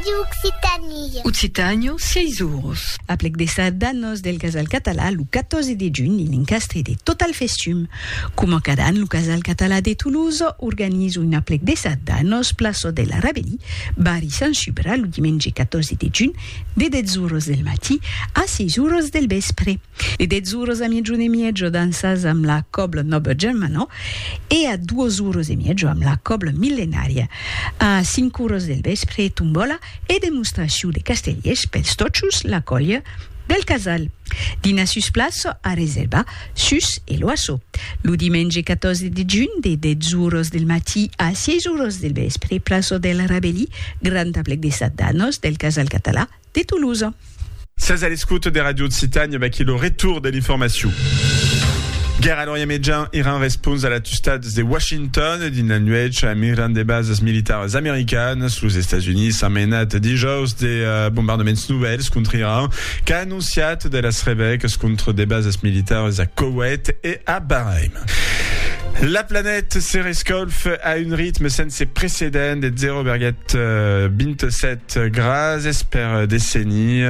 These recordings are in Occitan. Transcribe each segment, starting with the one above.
Radio Occitanie. Occitània, 6 oros. Aplec de sardanos del Casal Català lo 14 de junh en encastre de Total Festum. Coma cada an, lo Casal Català de Toulouse organiza un aplec de sardanos plaça de la Rabelí, barri Sant Subra, lo dimenge 14 de junh, de 10 oros del matí a 6 oros del vèspre. E dètz oras a miegion e miejo dansas amb la còbla nòba Germanò e a duas oras e miejo amb la còbla millenària. A cinc oras del vèspre, tombòla e demostracion de castellers pels tòchos, la còlha del casal. Dinar sus plaça a reservar sus e l'oasso. Lo dimenge 14 de junh, de dètz oras del matí a sièis oras del vèspre, plaça del Rabelí, grand aplec de sat d'anos del casal català, de Toulouse. Sètz a l'escouta de Radio Occitània, vaquí lo retour de l'informacion. Guèrra a l'Orient Mejan, Iran respons a l'atustats de Washington dins la nuèch a migrant de basas militaras americanas. Los Estats Units an menat dijaus de bombardaments novèls contra Iran, qu'a anonciat de las revècas contra de basas militaras a Koweït e a Bahrain. La planèt se rescalfa a un ritme sense precedent de 0,27 Gràcies per desenir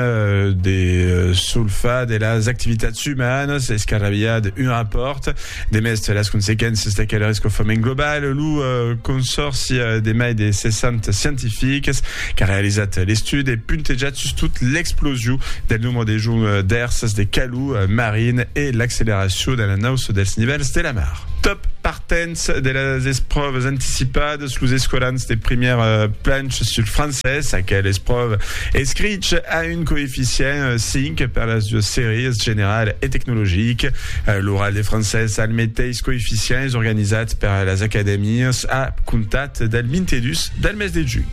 de solfar de las activitats umanas escarrabilhar d'un rapòrt de mès las consequéncias d'aquel rescofament global. Lo consòrci de mai de 60 scientifics qu'a realizat l'estudi e puntejat sustot l'explosion del nombre de joncs d'èrsas de calor marin e l'acceleracion de l'anauça dels nivèls de la mar. Dens de las espròvas anticipadas, los escolans de primièr planch sul francés, aquel espròva escrich a un coeficient 5 per las duas sèries, general e tecnologic. L'oral de francés al meteis coeficient es organizat per las acadèmias a comptat del 22 del mes de junh.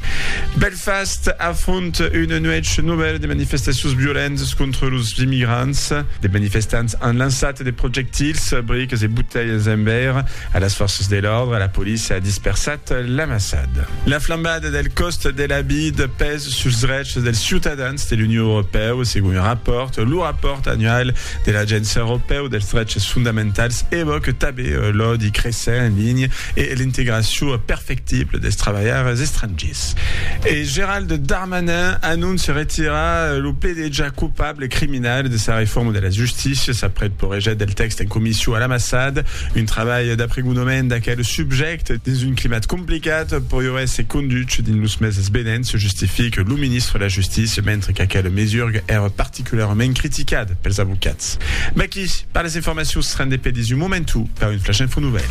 Belfast afront una nuèch novèla de manifestacions violentas contra los immigrants. De manifestants an lançat de projectils, briques e botelhas en veire a las fòrças de l'òrdre, la polícia a dispersat l'amassada. La flambada del còst de la vid pes suls drechs dels ciutadans de l'Union Europèu, segon un rapòrt. Lo rapòrt annual de l'Agéncia Europèu dels Dreches Fondamentals evòque tabé l'òdi cressent en linha e l'integracion perfectible dels trabalhaires estrangiers. E Gérald Darmanin anóncia retirar lo pdg coupable criminal de sa reforma de las justícias aprèp porejat del tèxt en comission a l'amassad, un trabalh d'apregonament d'aquel subjècte dins un climat complicat poriurè se conduch dins los meses venents, justifique lo ministre de la Justícia, mentre qu'aquela mesurga èra particularament criticada pels avocats. Mèqui per las informacions se rende pè dins un momentu per un flash info nouvèl.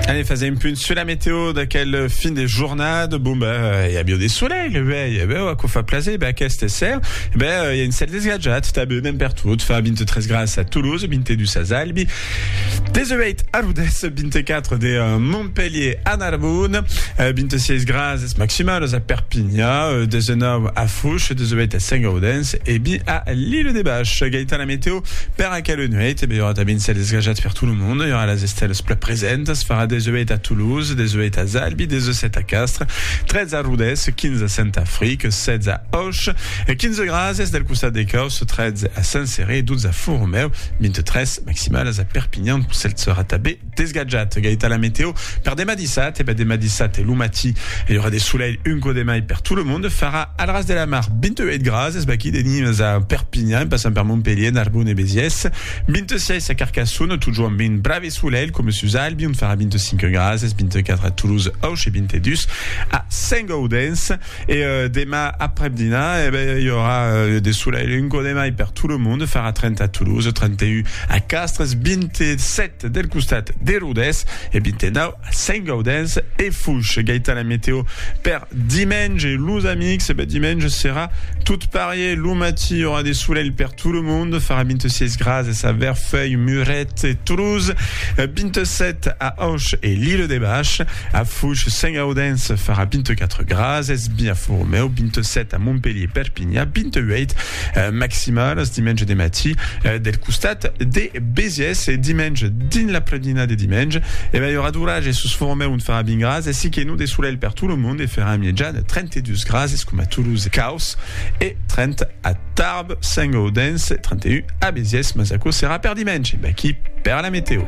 Allez, faisons un punt sur la météo d'aquel fin de journée. Bon, ben, il y a bien des soleils. E ben, e ben, aquò fa plaser. E ben, aqueste esser, e ben, i a un cèl desgatjat, tanben, ben pertot, fa 23 graus a Toulouse, 22 a Zalbi, 18 a Rodés, 24 de Montpelhier a Narbon, 26 grases maximales a Perpinha, 19 a Fouche, 18 a Saint-Gaudens e 20 a l'Ile de Bach. Gaita la meteo per aquela nuèit, e ben, i aurà tanben un cèl desgatjat per tot lo mond, i aurà las estèlas plan presentas, farà 18 a Toulouse, Toulouse, 18 a Zalbi, 17 a Castres, 13 a Rodés, 15 a Saint-Afric, 16 a Auch, 15 grases del costat de Caus, 13 a Saint-Céré, 12 a Fort-Romeu, 23 maximalas a Perpignan, lo cèl serà tanben desgatjat. Gaita la meteo per demà dissat, e ben demà dissat lo matí i aurà de solelh un cò de mai per tot lo monde, farà al ras de la mar 28 grases, vaquí de Nimes a Perpignan, passant per Montpellier, Narbonne e Béziers, 26 a Carcassonne, totjorn 20 bravi, Eth solelh, coma sus Albi, on farà 25 grads, es 24 a Toulouse, Auch e 22 a Saint-Gaudens. E demà aprèp dinar, e ben, i aurà de solelh, un cò de mai per tot lo monde, farà 30 a Toulouse, 31 a Castres, 27 del costat de Rodés e 29 Saint-Gaudens e Foix. Gaitan la meteo per dimenge, los amics. E ben, dimenge serà tot parier. Lo matí i aurà de solelh per tot lo monde. Farà 26 grases a Verfeuil, Muret e Toulouse, 27 a Auch e l'Ile de Bach. A Foix, Saint-Gaudens farà 24 grases, Biafòrmeu, 27 a Montpelhier, Perpignan, 28 Maximal es dimenge de matí del costat de Besiès e dimenge dins l'apremdina de dimenge e mai aurà d'orage e sus Formèu ont farà 20 grads e si que non de solelh per tot lo mond e farà mièja de 32 grads es coma Toulouse e Caus e 30 a Tarbes, Saint-Gaudens e 31 a Besiès mas aquò serà per dimenge. Vaquí per la meteo.